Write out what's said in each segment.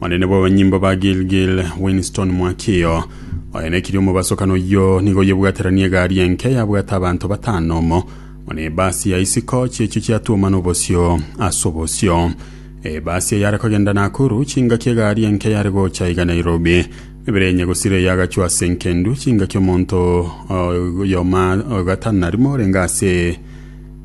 Omonene bw'abanyimbo ba Gilgil, Winston Mwakio, oenekirie omobasokano oyio nigo oyebwateranie egari enke yabwate abanto batano omo buna ebasi ya isiko chi'echio chiatuomana obosio ase obosio. Ebasi eyare kogenda Nakuru, chingaki egari enke yare gocha iga Nairobi, mebere enye gosira eyagachwa ase enkendu, chingaki omonto oyoma ogatano na rimo orenge ase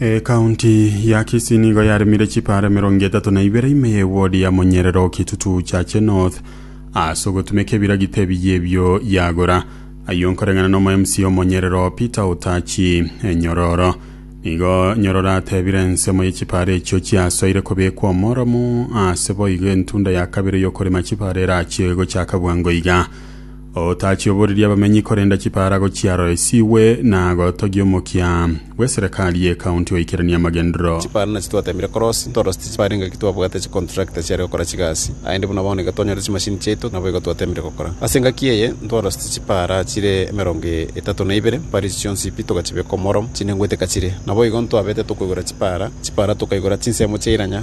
ekaunti ya kisii nigo yaremire chipara mirongo etatu na ibere ime ya ewodi ya monyerero kitutu chache north ase ogotumeka ebiragita ebiya ebio yagora ayio nkoreng'ana na omo mca omonyerero peter otachi enyororo nigo nyororo atebire ensemo y'echipara echio chiasoire kobekwa omoromo ase boigo entunda ya kabere y'okorema chipara erache gochaka bwango iga Otachioborerie abamenyi korenda chipaarago chiaro esigwe na gotogia omokia bw'eserekari y'ekaunti oikeranie amagenderero. Chipaara nachi twateemire korosi, ntorosete chipaara inga ki twabwate chicontractor chiare gokora chigasi, aende buna bono iga twanyore chimashini chiaito naboigo twateemire gokora. Ase engaki eye ntwarosete chipaara chire emerongo etato na ibere, mpari echi chionsi pi togachibeka omoro chinengwete kachire. Naboigo ntwabete tokoigora chipaara, chipaara tokaigora chinsemo chia iranya,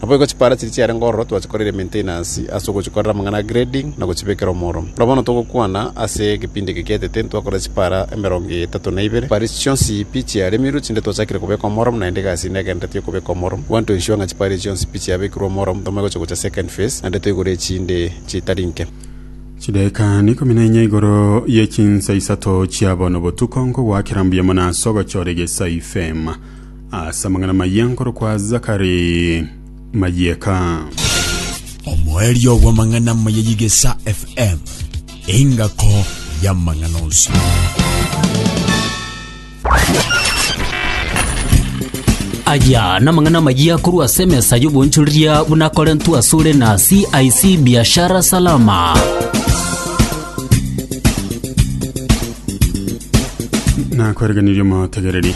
Naboigo chipaara chiria chiarenge ororo twachikorire maintenance ase ogochikorera amang'ana a grading na gochibekera omoro. Ora bono togokwana ase egepindi eke gietete ntwakorire chipaara emerongo etato na ibere. Chipaara echi chionsi pi chiaremirwe chinde twachakire kobeka omoro naende egasi ende egendererete y'okobeka omoro. Gwanto ensure ng'a chipaara echi chionsi pi chiabekirwe omoro mbotambe gocha gocha second phase naende toigure echinde chitari nke. Chidaeka ikomi na inya igoro ye chinsa isato chia bono botuko nkogoakera mbuya mono ase ogochora egesai fema. Ase amang'ana mayia nkorokwa Zakari mayieka. Omoerio bw'amang'ana amaya y'Egesa FM, engako y'amang'ana onsi. Aya namang'ana magia korwa ase emesa y'obonchoreria buna Korentu asore na CIC Biashara Salama. nakwereganirie omotegereri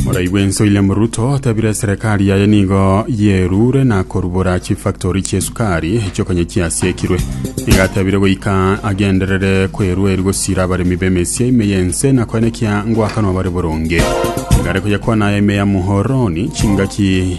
oraigwe ense william ruto atabire serikali yaye nigo yerure na korubora chifactori chiesukari echiokanye chiasiekirwe nigo atabire goika agenderere kwerueri gosira abaremi b'emesia ime y'ense na koenekia ngwakanwa bare boronge igare koyakwana ime ya muhoroni chingaki